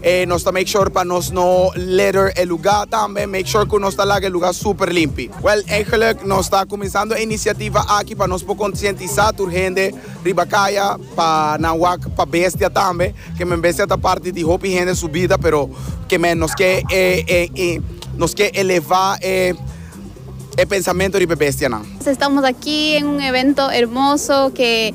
E nos ta make sure pa nos no litter e luga tambe, make sure cu nos ta laga e luga super limpi. Well, eigenlijk nos ta cuminsando e iniciativa aki pa nos por concientisa tur hende riba caya pa nan wak pa bestia tambe, que men bestia ta parti di hopi hende su bida, pero que men nos ke nos ke eleva e pensamento riba e bestianan. Estamos aki en un evento hermoso que.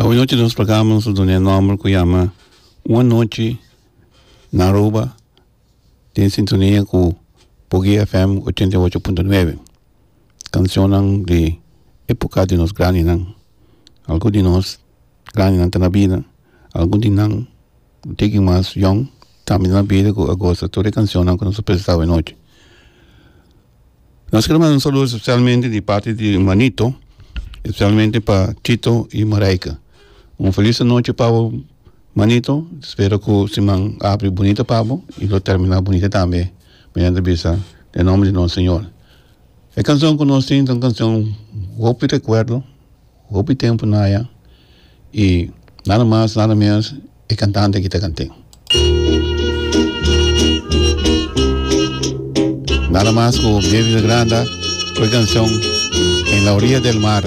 Awe nochi nos programa nos a duna e nomber cu yama Un Anochi na Aruba den sintonia cu Boguey FM ochenta y ocho punto nuebe cancionnan di epoca di nos grandinan algun di nos grandinan ta na bida algun di nan tigi mas yong tambe ta na bida cu a goza tur e cancionnan cu nos a presenta awe nochi. Nos quiero manda un saludo especialmente di parte di manito, especialmente pa Chito y Marijke. Un feliz noche pabo manito, espero cu siman abri bonito pabo y lo termina bonito tambe mediante bisa den nombre di nos Señor. E cancion cu nos tin ta un cancion hopi recuerdo. Hopi tempu naya y nada mas nada menos e cantante aki ta cante. Nada mas cu David Granda cu e cancion En la orilla del mar.